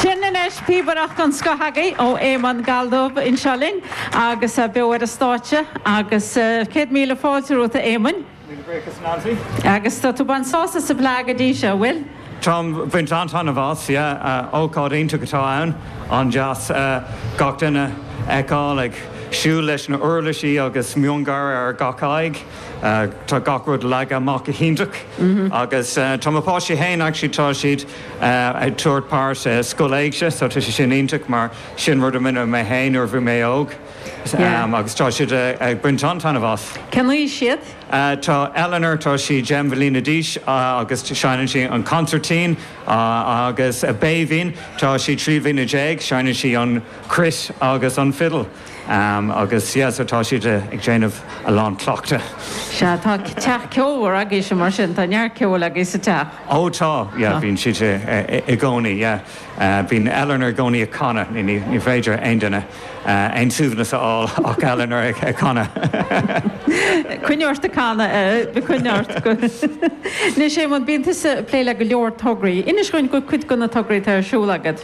Sin anois píobaireacht den scoth agaibh ó Éamonn Galldubh anseo linn agus beo ar an stáitse agus céad míle fáilte romhat a Éamoinn. Míle buíochas Nancy. Agus tá tú baint sásamh sa bhFleadh go dtí seo, an bhfuil? Táim baint an-taitneamh as, yeah. Ócáid iontach atá ann, an-deas gach duine a fheiceáil ag siúl leis na uirlisí agus miongháire ar gach aghaidh. Tá gach rud leagtha amach go hiontach agus tá mo pháistí féin actually tá siad ag tógáil páirt i Scoil Éigse so tá sé sin iontach mar sin rud a rinne mé féin nuair a bhí mé óg agus tá siad ag baint an-taitneamh as. Cén aois iad? Tá Eleanor tá sí deich mbliana d'aois agus seineann sí an consairtín agus Béibhinn tá sí trí bliana déag seineann sí an cruit agus an fiddle. Agus yeah so tá siad ag déanamh a lán cleachtaidh. Sea, tá teach ceolmhar agaibhse mar sin, tá neart ceoil agaibh sa teach. Ó tá, yeah bíonn siad i gcónaí yeah. Bíonn Eleanor i gcónaí ag canadh, ní féidir aon duine aon suaimhneas a fháil ach Eleanor ag canadh. Coinnigh ort ag canadh coinnigh ort. Anois Éamonn, bíonn tusa ag plé le go leor tograí. Inis dhúinn faoi chuid de na tograí atá ar siúl agat.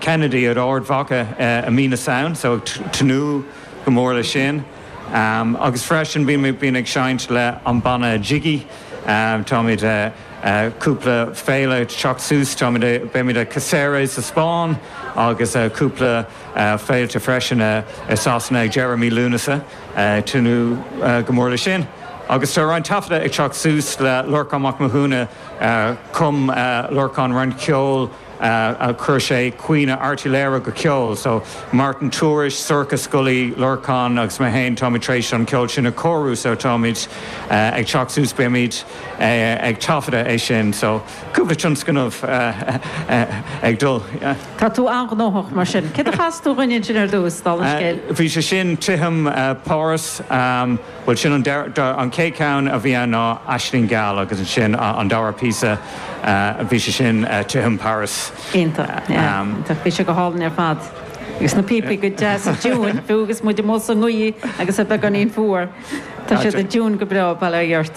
Kennedy in Ard Mhacha i mí na Samhna so ag tnúth go mór le sin agus freisin bím ag seinnt le an banna Jiggy táimid cúpla féile teacht suas táimid a beimid i Cáceres sa Spáinn agus a cúpla féilte freisin i Sasana ag deireadh mí Lúnasa tnúth go mór le sin agus tá roinnt taifeadta ag teacht suas le Lorcán Mac Mathúna chum Lorcán roinnt ceoil chuir sé caoineadh Airt Uí Laoghaire go ceol, so Martin Tourish, Sorcha Scully, Lorcán agus mé féin táimid tar éis an ceol sin a chóiriú so táimid ag teacht suas beimid ag taifeadadh é sin so cúpla tionscnamh ag dul. Tá tú an-ghnóthach mar sin. Céard a chas tú dhúinn ansin ar dtús, dála an scéil? Bhí sé sin, Titim Pháras. Bhuel sin an chéad cheann a bhí ann ná Aisling Gheal agus ansin an dara píosa bhí sé sin Titim Pháras. Iontach, iontach. Bhí sé go hálainn ar fad. Agus na píopaí go deas i dtiúin. Bhí agus muid amuigh sa ngaoth agus é beagáinín fuar. Tá siad i dtiúin go breá, bail ó Dhia ort.